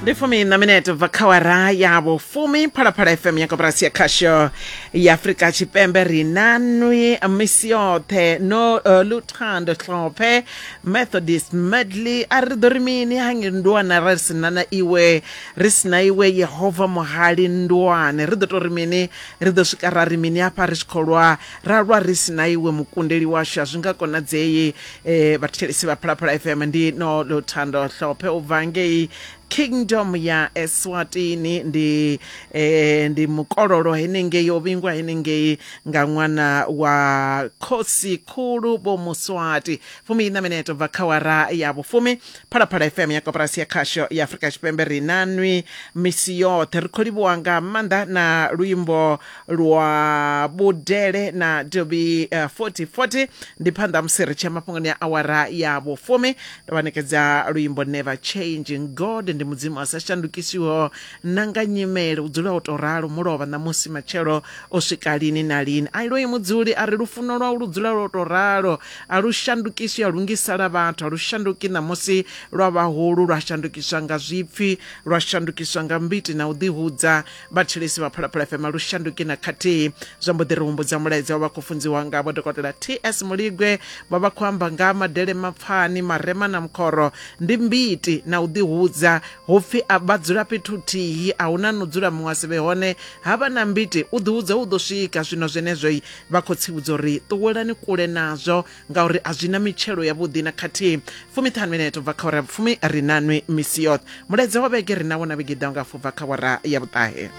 ndi fumi na minete bva kha wara ya vhufumi phalaphala fm ya koporasi ya khasho ya afurika tshipembe ri na nwi misi yoṱhe no uh, luthando hlophe methodist medley a ri ḓo ri mini hange ndwana ra ri sina na iwe ri sina iwe yehova muhali ndwane ri ḓo to ri mini ri ḓo swika ra ri mini hafha ri tshi khou lwa ra lwa ri sina iwe mukundeli washu a zwi nga konadzei e vhathetshelesi vha phalaphala fm ndi no luthando hlophe u bva ngei kingdom ya eswatini ndi eh, ndi mukololo henengei o vhingwa henengei nga ṅwana wa khosi khulu vho muswati fumi ina mineto bva kha wara ya vhufumi phalaphala fm ya koporasi ya khasho ya afurika tshipembe ri na nwi misi yoṱhe ri khou livhuwa nga maanḓa na luimbo lwa vhudele na dobi uh, 4040 ndi phanḓa musi ri tshia mafhungoni a awara ya vhufumi ndo vha nekedza luimbo never changing god ndi mudzimu a sa shandukisiho na nga nyimele u dzula u to ralo mulovha ṋamusi matshelo o swika lini na lini a iloyi mudzuli a ri lufuno lwau lu dzula lwo to ralo a lu shandukiswi a lungisala vhathu a lu shanduki ṋamusi lwa vhahulu lwa shandukiswa nga zwipfi lwa shandukiswa nga mbiti na u ḓihudza vhathetshelesi vha phalaphala fm lu shanduki na khathihi zwa mbo ḓi ri humbudza mulaedza wa vha khou funziwa nga vho dokotela ts muligwe vha vha khou amba nga madele mapfani marema na mukhoro ndi mbiti na u ḓihudza hu pfi a vha dzula fhethu thihi a huna no dzula muṅwe a si vhe hone ha vha na mbiti u ḓihudza u ḓo swika zwino zwenezwoi vha khou tsivhudza uri ṱuwelani kule nazwo ngauri a zwi na mitshelo yavhuḓi na khathihi fumiṱhanu mineto bva kha wara ya vhufumi ri na nwi misi yoṱhe mulaedza wa vhege ri na wona vhege ḓaho nga fu bva kha wara ya vhuṱahe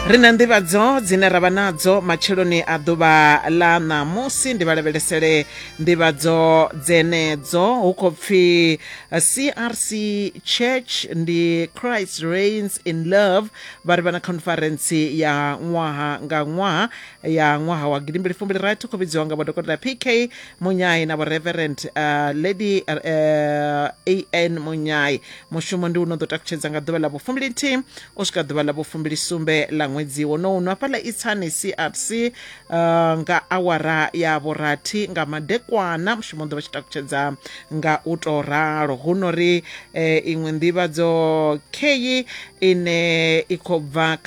ri na nḓivhadzo dzine ra vha nadzo matsheloni a ḓuvha ḽa ṋamusi ndi vha lavhelesele nḓivhadzo dzenedzo hu khou pfhi crc church ndi christ reigns in love vha ri vha na khonferentsi ya ṅwaha nga ṅwaha ya ṅwaha wa gidimbili fumbili rathi khou vhidziwa nga vhodokotela pk munyai na vhoreverend uh, lady uh, an munyai mushumo ndi uno ḓo takutshedza nga ḓuvha ḽa vhufumbili nthihi u swika ḓuvha ḽa vhufumbili sumbe ḽa ṅwedzi wonowu no hafhaḽa itsani crc Uh, nga awara ya vhurathi nga madekwana mushumo ḓo vha tshi takutshedza nga u to ralo hu no ri eh, iṅwe nḓivhadzo kheyi ine i khou bva kha